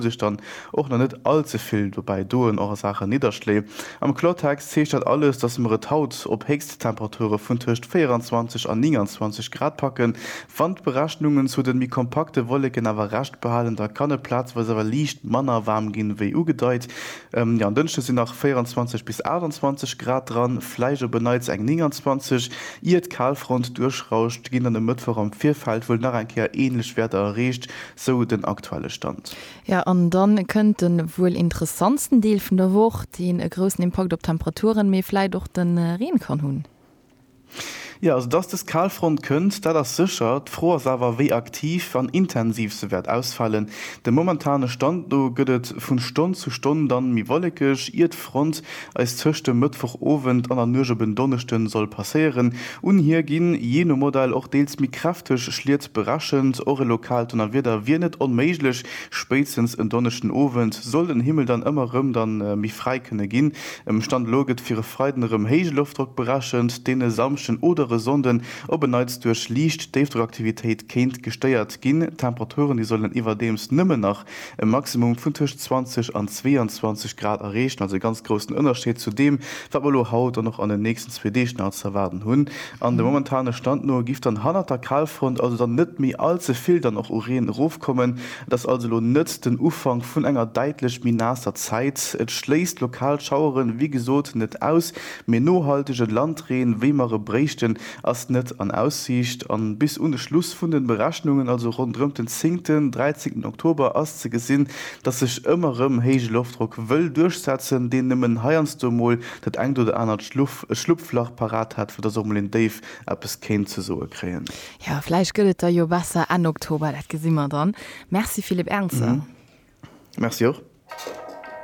sech dann och nach net all ze vill dobäi doen, och a Saachen Nidderschléi. Am Kloertext heescht dat alles, datt mer et haut op Héchsttemperature vun tëscht 24 an 29 Grad packen. Wann d'Berechnungen zu de méi kompakte Wolleken awer Recht behalen, da kann et plazeweis awer liicht manner waarm ginn, wéi ugedeit. Jo, en Dënschde sinn nach 24 bis 28 Grad dran, vläicht op e Neits eng 29. Ier d'Kalfront duerchrauscht, ginn dann e Mëttwoch am Virfeld wuel nach eng Kéier änlech Wäerter erreecht, Sou den aktuelle Stand. Jo, an da kënnt de wuel interessantsten Deel vun der Woch, deen e groussen Impakt op d'Temperaturen, mee vläit och de Reen kann hunn. Jo, also dass dës Kalfront kënnt, dat ass sécher. D'Fro ass awer, wéi aktiv an intensiv se wäert ausfalen. Dem momentane Stand no gëtt et vun Stonn zu Stonn dann méi wollekeg, iert. Front eis tëscht dem Mëttwoch Owend an der Nuecht op en Donneschden soll passéieren. Un hir ginn, jee no Modell, och deels méi kräfteg Schliet berechent. Och e lokaalt Donnerwieder wier net onméiglech. Spéitstens en Donneschden Owend soll den Himmel dann ëmmer erëm da méi fräi kënne ginn. Um Stand elo gëtt fir e Freiden erëm héije Loftdrock berechent, deen e Samschden oder e Sonnden op en Neits duerch liicht Déifdrockaktivitéit kéint gestéiert ginn. D'Temperaturen, déi sollen iwwerdeems nëmmen nach e Maximum vun tëscht 20 an 22 Grad erreechen, also e ganz groussen Ënnerscheed zu deem, wat mer elo haut an och an den nächsten zwee Deeg nach ze erwaarden hunn. An dem momentane Stand no giff dann hannert der Kalfront also dann net méi all ze vill dann och u Reen erofkommen. Et ass also elo net den Ufank vun enger däitlech méi naasser Zäit. Et schléisst lokal Schaueren, wéi gesot, net aus, mee nohaltege Landreen, wéi mer e bréichten, ass net an Aussiicht an bis un de Schluss vun den Berechnungen, also ronderëmt den zéngten, dräizéngten Oktober, ass ze gesinn, dass sech ëmmer rëm héije Loftdrock wëll duerchsetzen, deen nëmmen heiansdo mol dat engt oder anert Schlupflach parat hat, fir dass och mol een Déif eppes kéint ze soe kréien. Jo, vläicht gëtt et da jo besser Enn Oktober, dat gesi mer dann. Merci Philippe Ernzer. Merci och.